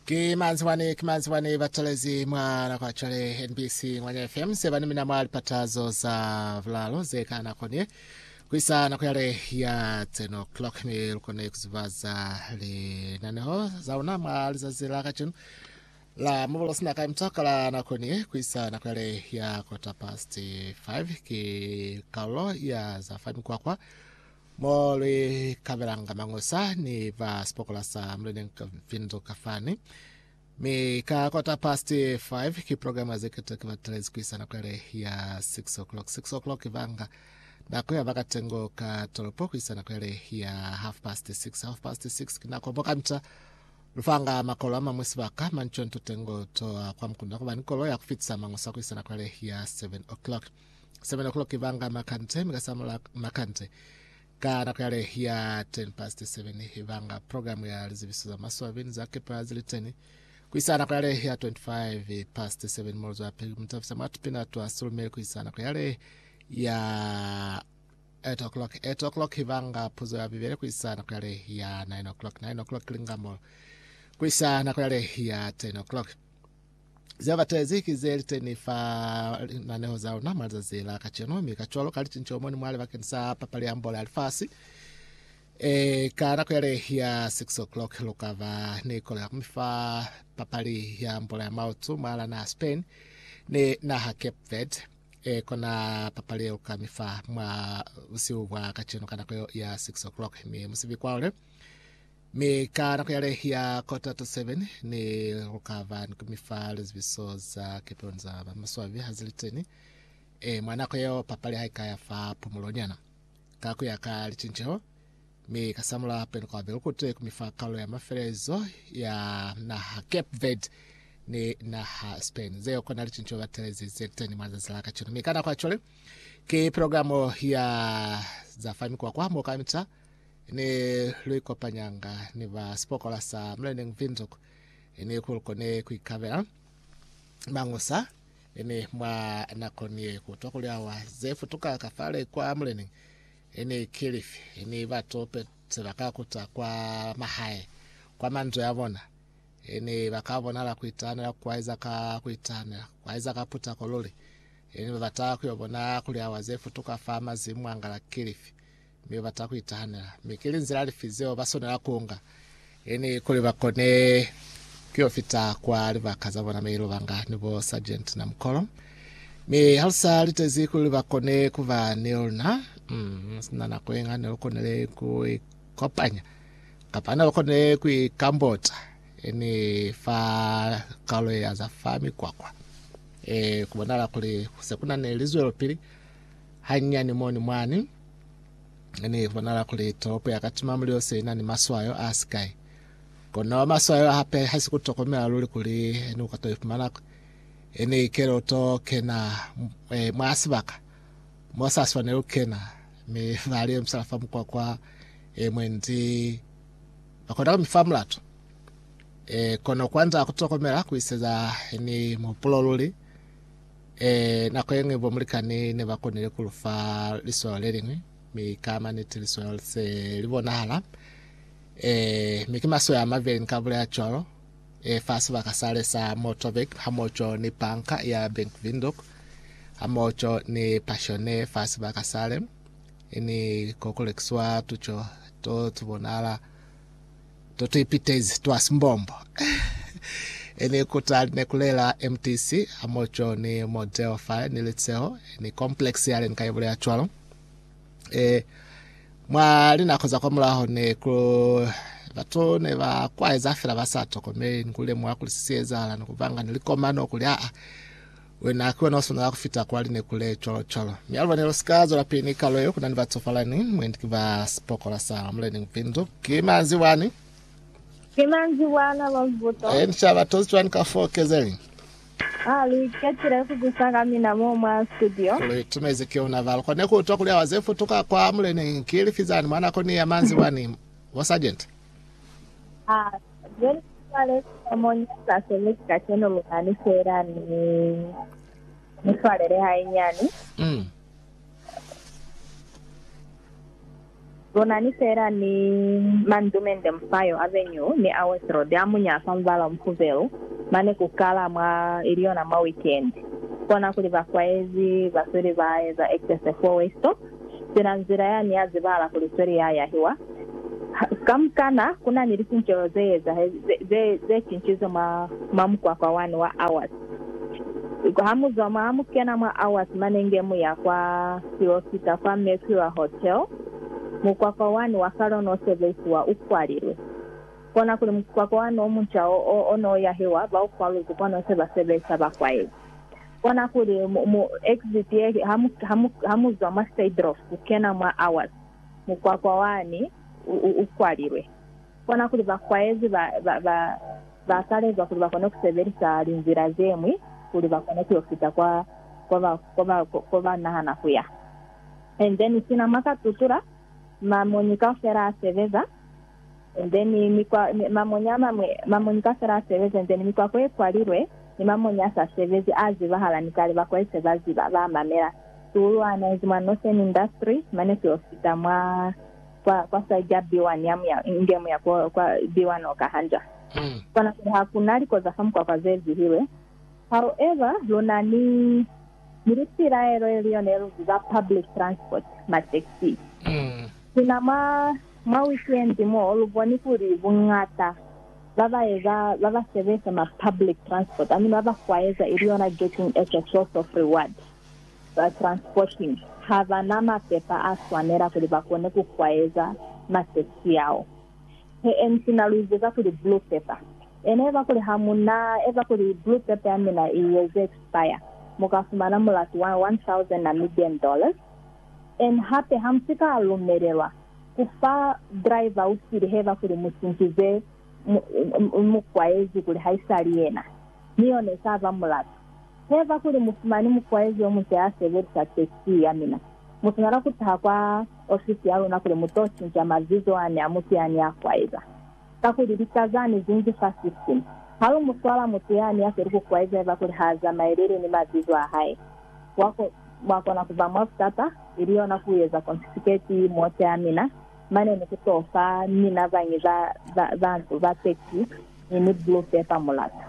Ki manzibwani, ki manzibwani batalezi mwa nako ya cwale NBC Ngwanya FM se bani mina mwa lipata zo za bulalo ze ka nako ni kuisa nako yale ya 10 o'clock ni lukone kuzubaza linaneho za luna mwa lizazi la kacenu la mubulo sina ka mtaka la nako ni kuisa nako yale ya quarter past 5 ki kaulo ya za fa mikwakwa Mo lwi kabelanga mañosa ni ba sipokola sa Muleneñi ka Vinzo kafani. Mi ka quarter past 5 ki programa ze keta ki batelezi kuisa nako yale ya 6 o'clock. 6 o'clock banga nako ya bakatengo ka tolopo kuisa nako yale ya half past 6. Half past 6 ki nako bokamita lufanga makolo amamwi sibaka manconto tengo toa kwa mukunda kuba ni kolo ya kufitisa mañosa kuisa nako yale ya 7 o'clock. Semena kulo ki banga makante, mi ka samula makante ka nako yale ya 10 past 7 banga program ya lizibiso za maswabi ni za kepa zili teni kuisa nako yale ya 25 past 7 molo zwapili kumutafisa mwa tupina twa sulumeli kuisa nako yale ya 8 o'clock 8 o'clock banga puzo ya bibele kuisa nako yale ya 9 o'clock 9 o'clock lingamo kuisa nako yale ya 10 o'clock ze batezi ki ze li teni fa linaneho za luna mwa lizazi la kacenu, mi kacwalo ka licinco mo ni mwale bakeni sa papali ya mbola ya lifasi. E, ka nako yale ya 6 o'clock lu ka ba ni kolo ya kumi fa papali ya mbola ya maotu mwa la naha Spain ni naha Cape Verde. E, kona papali ye lu ka mi fa mwa busihu bwa kacenu ka nako ya 6 o'clock, mi musibi kwahule Mi ka nako yale ya kota to seven, ne lu ka ba ni ku mi fa lizibiso za kepelo ni za ba maswabi ha ze li teni. E, mwa nako yeo papali ha i ka ya fa pumulonyana. Ka ku ya ka licinceho, mi ka samula hape ni ku abela lukute ku mi fa kalulo ya mafelelezo ya naha Cape Verde ni naha Spain. Zeo kona licinceho ba telezi ze li teni mwa lizazi la kacenu. Mi ka nako ya cwale, ki programo ya za fa mikwakwa mo kamita ne lu ikopanyanga ni ba sipokola sa Mlenneng Windhoek ne ku lu kone ku ikabela mangusa ne mwa nakoni ye ku twa kuli awa ze futuka ka fale kwa Mlenneng ne ki lifi ne batu pe se ba ka kuta kwa mahae kwa manzwi a bona ne ba ka bonala ku itahanela kwa eza ka ku itahanela kwa eza ka putako luli ne ba bata ku yo bona kuli awa ze futuka fa mazimu a ngala ki lifi mi babata kuitahanela, mi ki linzila lifi zeo baswanela kuunga ini kuli bakone kuyo fita kwa libaka zabona Mailo Banga ni bo Sargent Namukolo? Mi halusa litezi kuli bakone kuba ni luna, mm, sina nako yenga ne lukonile kuikopanya kapa ne lukonile kuikambota ini fa kaulo ya za fa mikwakwa. E, kubonala kuli se kuna ne lizwelopili Hanyinyani moni mwani, ne ni bonala kuli tolopo ya ka Tumamulilo se ina ni maswayo a sikai. Kono maswayo hape hasi ku tokomela luli kuli ni uka to ifumana e ni ikele u to kena e, mwa sibaka mo sa swaneli ku kena, mi ba li emisela fa mukwakwa e, mwendi ba kona ku mi fa mulato. E, kono kwand'a ku tokomela ku iseza ni muhupulo luli. Ee, nako ye ñwi bo mulikani ne ba konile ku lu fa liswalo le liñwi, mi ka maniti liswalo li se li bonahala. Ee, mi ki maswai a mabeli ni ka bulela cwalo. Ee, fa sibaka sale sa Motorbike hamoco ni Banka ya Bank Windhoek hamoco ni Passione fa sibaka sale, ni ko ku lekiswa tuco to tu bonahala. To to ipitezi twa simbombo e ni kutali ne kulela MTC hamoco ni mo Delphi ni Litseho ni complex yale ni ka ibulela cwalo. E, mwa linako za kwa mulaho ne ku batu ne ba kwaeza fela ba sa tokomeli ni ku lemuha kuli si ezahala ni ku banga ni likomano kuli aa Wena ki wena wa swanela ku fita kwa linekule, cwalo cwalo. Mi aluba ne lu si ka zwela pili ni kalo yeo, ku na ni batsofalani, mwendi ki ba sipokola sa Mulena Mpindu. Ki manzibwani. Ki manzibwana ba Mubuto. Ee, ni ca ba tozi cwani ka foo, Kezeli? Aa, lu iketile ku kusa ka mina mo mwa studio. Ku lu itumezi ki ona ba lu kone ku utwa kuli awa ze futuka kwa Mulena ki lifi zani mwa nako ni ya manzibwani, bo Sargent? A Jeni ku swale sina mo ni sa sebezi kacenu luna ni fela ni ni swalele hainyani. Mm. Luna ni fela ni mandumende mufayo a venyu ni a Westroad a muñaa fa mubala o mufubelu mane ku kala mwa ili yona mwa weekend. Kona kuli ba kwaezi ba sweli ba eza excess fo Westop. Sina nzila ya ni ya zibahala kuli sweli ya yahiwa. Kamukana, ku na ni lisincelo ze ezahezi, ze, ze cincize mwa, mwa mukwakwa wani wa Awas. Ha mu zwa mwa, ha mu kena mwa Awas mane nge mu ya kwa, silo sika kwa Mercure Hotel, mukwakwa wani wa kale o n'o sebeisiwa u kwalilwe. Kona kuli mukwakwa wani o munca o, o, o n'o yahiwa, ba u kwaluzwi kono se ba sebeisa bakwaezi. Kona kuli, mu, mu exit ye, ha mu, ha mu, ha mu zwa mwa Sidrof ku kena mwa Awas, mukwakwa wani u, u, u kwalilwe. Kona kuli bakwaezi ba, ba, ba, ba kalezwa kuli ba kone ku sebelisa linzila ze ñwi kuli ba kone ku yo fita kwa, kwa ba, kwa ba, ko ba nahana ku ya. And then sina mwa ka tutula, ma moni kaufela a sebeza. and then mikwa mamonyi amamwe mamonyi kafela asebezi and then mikwa kwe kwalilwe ni mamonyi asa sebezi a zibahala ni kale bakwali se ba ziba ba mamela suulu ana inzi mwa Northern industry mane fyo fita mwa kwa kwa side ya B1 ya muya inge muya kwa kwa B1 oka hanja kona kuli hakuna likoza fa mukwakwa ze zihilwe however luna ni ni lipilaelo ili yone lu ziba public transport ma taxi sina mwa Mwa wikendi mo, lu boni kuli buñata ba ba eza ba ba sebeza mwa public transport mi ba ba kwaeza, ili yona getting as a source of reward for transporting, ha ba na mapepa a swanela kuli ba kone ku kwaeza mwa taxi yao. He MC na lu izeza kuli blue paper. Ena eba kuli ha mu na eza kuli blue paper ya mina i eze expire, mu ka fumana mulatu wa 1000 Namibian dollars. En hape ha mu si ka lumelelwa ku fa driver u sili heba kuli mu sintize mukwaezi kuli haisali yena ni yo ne sa ba mulatu. Heba kuli mu fumani mukwaezi yo munca ya sebelisa taxi ya mina, mu swanela ku taha kwa ofisi ya luna kuli mu to cinca mabizo a ne a mutu ya ne a kwaeza. Kakuli lika zani zi ngi 5:15. Ha lu mu swala mutu yani ya si lu ku kwaeza haiba kuli ha zamaeleli ni mazizo a hae, wa, wa kona ku ba mwa butata, ili yona ku eza konfisiketi mote ya mina, mane ni ku t'o fa mina bañi ba, ba, ba nto, ba pekisi ni, ni blue paper mulato.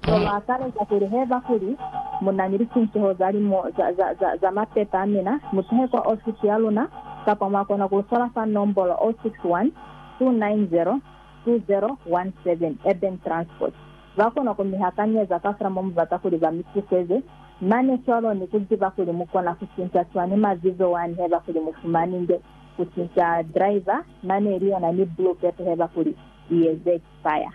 Polo ataleza kuli, Haiba kuli munani licinceho za limo za mapepa amina, mutuhe kwa ofisi yaluna, kapa mwakona kulufola fa nombolo 061-290-2017, Urban Transport. Bakona kumihakanyeza kafela momubata kuli bamituseze, mane cwalo ni kuziba kuli mukona kucinca cwani mazizo wani haiba kuli mufumaninge kucinca driver mane ili yona ni blue paper haiba kuli iye ze expire.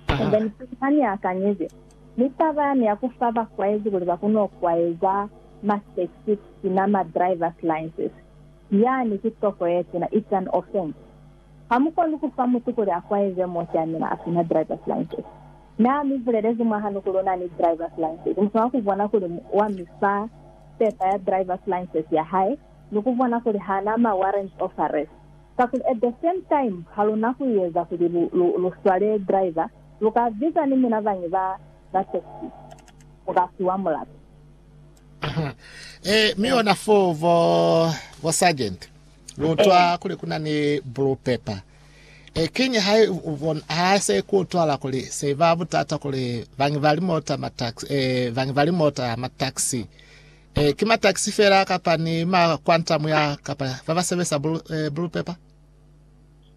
Taha. Ni pili ha ni akanyezi, mi taba yani ya ku fa bakwaezi kuli ba kono kwaeza ma state seat sina ma drivers license, yani ki toko ye tuna, it's an offence. Ha mu koni ku fa mutu kuli a kwaeze mo ki amina a sina drivers license. Na mi bulelezi mwahanu kuli una ni drivers license, mu swanela ku bona kuli wa mi fa pepa ya drivers license ya hae ni ku bona kuli hana ma warrants of arrest. Kakuli at the same time haluna kuieza kuli lu, lu, lu swale driver, luka biza ni mina bañi ba, ba taxi, muka fiwa mulato. Eeh, mi ona foo bo, bo sergeant, lu utwa Eeh. kuli kuna ni blue pepper. Eeh, kiñi ha i, u bona, ha i se ku utwala kuli se iba butata kuli bañi ba limota, ma taxi, eeh, bañi ba limota, ma taxi, E, ki matakisi fela kapa ni makwantamu ya kapa baba sebesa bulu, e, bulu pepa?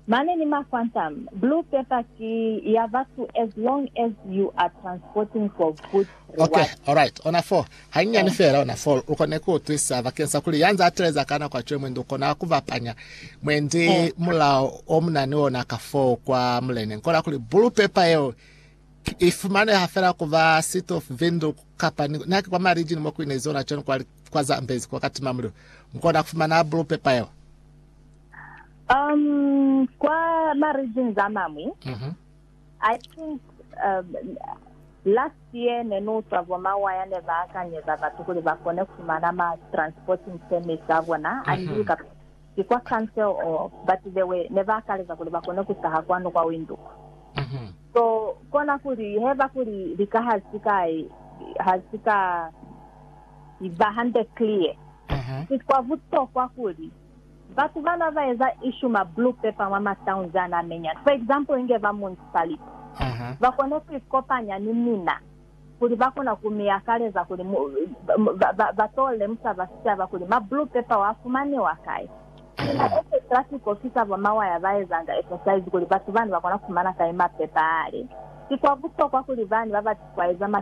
Mane ni makwantam. Blue paper ki ya batu as long as you are transporting for good reward. Okay, alright. Ona fo. Hanyinyani fela ona fo. Ukone ku utwisa bakeng sa kuli yanza ateleza ka nako atwe mwendi ukona ku bapanya mwendi mulao o munani ona ka fo kwa mulene. Nkona kuli bulu pepa yeo I fumaneha fela ku ba City of Windhoek kapa ni naki kwa marijini mo ku ina izona cwani kwa, kwa Zambezi kwa katima mulilo. Mu kona ku fumana blue paper yeo. Um, kwa marijini za mamwi, mm -hmm. I think um, last year ne ni utwa bo mawaya ne ba akanyeza batu kuli ba kone ku fumana ma transporting permits a bona, mm -hmm. andi ka ki kwa council or batu bewe neba akaleza kuli bakone kutaha kwanu kwa winduku. So kona kuli heba kuli lika hasi ka hasi ka ba hande clear, ki kwa butokwa kuli batu bana ba eza issue ma blue paper mwa ma towns ana amenyani, for example inge ba municipality, bakone ku ikopanya ni mina kuli ba kona ku mi akaleza kuli mu, ba, ba, ba to lemusa ba sicaba kuli ma blue pepper wa fumaniwa kai. Ba eze traffic officer bo mawaya ba ezanga exercise kuli batu bani ba kona ku fumana kai ma pepper a li. Ki kwa butokwa kuli bani ba bati kwa eza ma